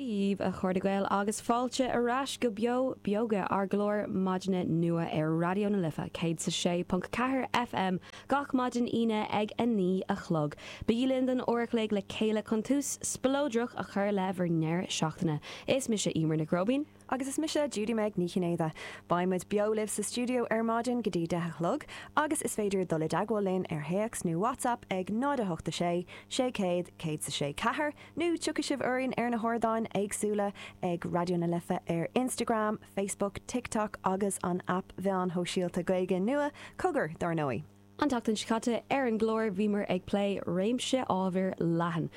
Díbh, a chairde Gael, agus fáilte ar ais go Beo Beoga, ár gclár maidine nua ar Raidió na Life 106.4 FM gach maidin Aoine ag a naoi a chlog. Bígí linn don uair a chloig le chéile chun tús spleodrach a chur le bhur ndeireadh seachtaine. Is mise Emer Nic Róibín. Agus is mise Judy-Meg Ní Chinnéide. Beidh muid beo libh sa stiúideo ar maidin go dtí deich a chlog agus is féidir dul i dteagmháil linn ar théacs nó WhatsApp ag 08 6 600 100 sa 6 4 nó tiocfaidh sibh orainn ar na hardáin éagsúla ag Raidió na Life ar Instagram, Facebook, TikTok agus an aip mheáin shóisialta Gaeilge nua, Cogar, dar ndóigh. An tseachtain seo caite ar an gclár bhíomar ag plé réimse ábhar leathan.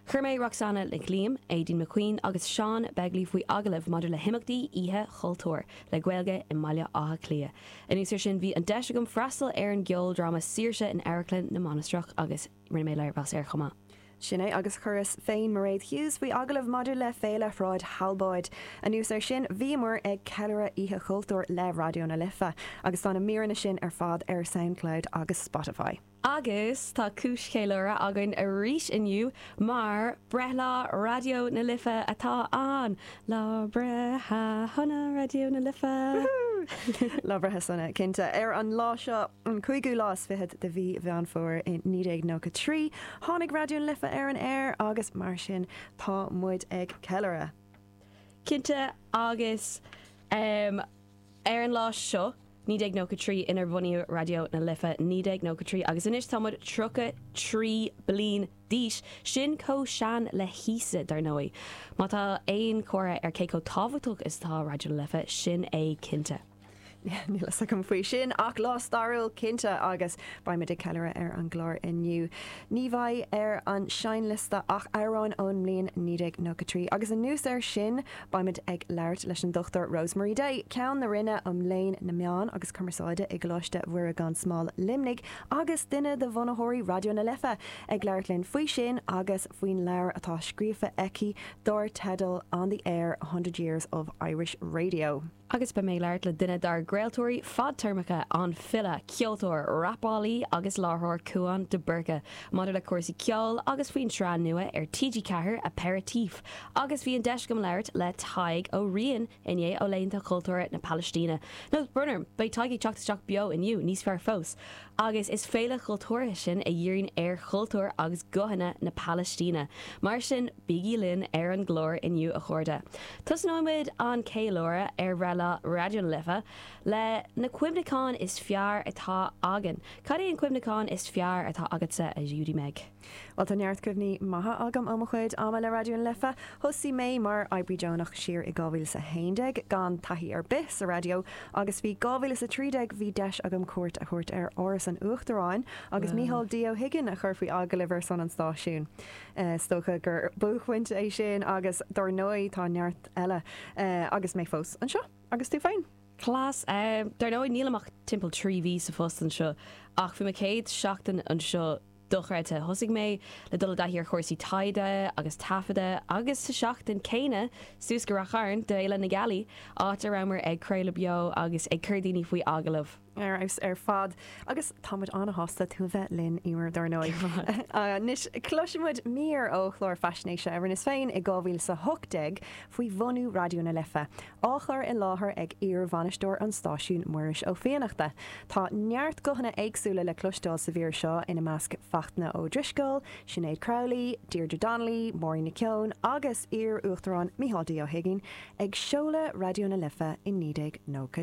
Chuir mé Roxanna Nic Liam, Aideen McQueen agus Seán Begley faoi agallamh maidir le himeachtaí Oíche Chultúir le Gaeilge i mBaile Átha Cliath. Anuas ar sin bhí an deis agam freastal ar an gceoldráma Saoirsí in Amharclann na Mainistreach agus. Rinne mé léirmheas air chomh maith. Sin é, agus chuireas féin Mairéad Hughes faoi agallamh maidir le Féile Shráid Thalbóid. Anuas ar sin, bhíomar ag ceiliúradh Oíche Chultúir le Raidió na Life, agus tá na míreanna sin ar fad ar Soundcloud agus Spotify. Agus tá cúis cheiliúrtha againn arís inniu, mar breithlá Raidió na Life atá ann! Lá breithe shona Raidió na Life! Woohoo! Lá breithe sona, cinnte. Ar an lá seo, an cúigiú lá is fichead de mhí Mheán Fómhair i 1993, tháinig Raidió na Life ar an aer agus mar sin tá muid ag ceiliúradh! Cinnte agus. Ar an lá seo, 1993, inar bunaíodh Raidió na Life, 1993 agus anois tá muid 33 bliain d'aois, sin chomh sean le hÍosa, dar ndóigh. Má tá aon chomhartha ar cé chomh tábhachtach is atá Raidió na Life, sin é cinnte. Níl a fhios agam faoi sin ach lá stairiúil cinnte agus beidh muid ag ceiliúradh ar an gclár inniu. Ní bheidh ar an seinnliosta ach amhráin ón mbliain 1993 agus anuas air sin, Beimid ag labhairt leis an Dr Rosemary Day, Ceann na Roinne um Léann na Meán agus Cumarsáide i gColáiste Mhuire Gan Smál, Luimneach, agus duine de bhunaitheoirí Raidió na Life ag labhairt linn faoi sin agus faoin leabhar atá scríofa aici dár teideal On the Air, 100 Years of Irish Radio. Agus beidh mé ag labhairt le duine dár gcraoltóirí fadtéarmacha, an file, ceoltóir, rapálaí agus láithreoir Cúán de Búrca, maidir le cúrsaí ceoil agus faoin tsraith nua ar TG4, Aperitif. Agus bhí an deis agam labhairt le Tadhg Ó Riain inné ó Laethanta Cultúrtha na Palaistíne. Nó, brón orm, beidh Tadhg ag teacht isteach beo inniu, níos fearr fós. Agus is féile chultúrtha sin a dhíríonn ar chultúr agus guthanna na Palaistíne. Mar sin. Bígí linn ar an gclár inniu a chairde. Tosnóimid an ceiliúradh ar bhreithlá Raidió na Life le na cuimhneacháin is fearr atá againn. Cad é an cuimhneachán is fearr atá agatsa a Judy-Meg? Bhuel tá neart cuimhní maithe agam ó mo chuid ama le Raidió na Life. Thosaigh mé mar oibrí deonach siar i 2011 gan taithí ar bith sa raidió agus faoi 2013 bhí deis agam cuairt a thabhairt ar Áras an Uachtaráin agus Micheál D Ó hUigínn a chur faoi agallamh ar son an stáisiún. Is dócha gur buaicphointe é sin agus dar ndóigh tá neart eile agus mé fós anseo. Agus tú féin? Class. Dar ndóigh nílim ach timpeall trí mhí sa phost anseo ach bhí mo chéad seachtain anseo dochreidte. Thosaigh mé le dul i dtaithí ar chúrsaí taighde agus taifeadta agus sa tseachtain céanna suas go Ráth Chairn d'Fhéile na Gealaí áit a rabhamar ag craoladh beo agus ag cur daoine faoi agallamh. ar fheabhas ar fad agus tá muid an-sásta tú a bheith linn, Emer, dar ndóigh. Anois cloisfidh muid mír ó chlár faisnéise a rinneas féin i 2018 faoi bhunú Raidió na Life, á chur i láthair ag iarbhainisteoir an stáisiúin, Muiris Ó Fiannachta. Tá neart guthanna éagsúla le cloisteáil sa mhír seo, ina measc Fachtna Ó Drisceoil, Sinéad Crowley, Deirdre Donnelly, Máirín Nic Eoin agus iar-Uachtarán Micheál D Ó hUigínn ag seoladh Raidió na Life i 1993.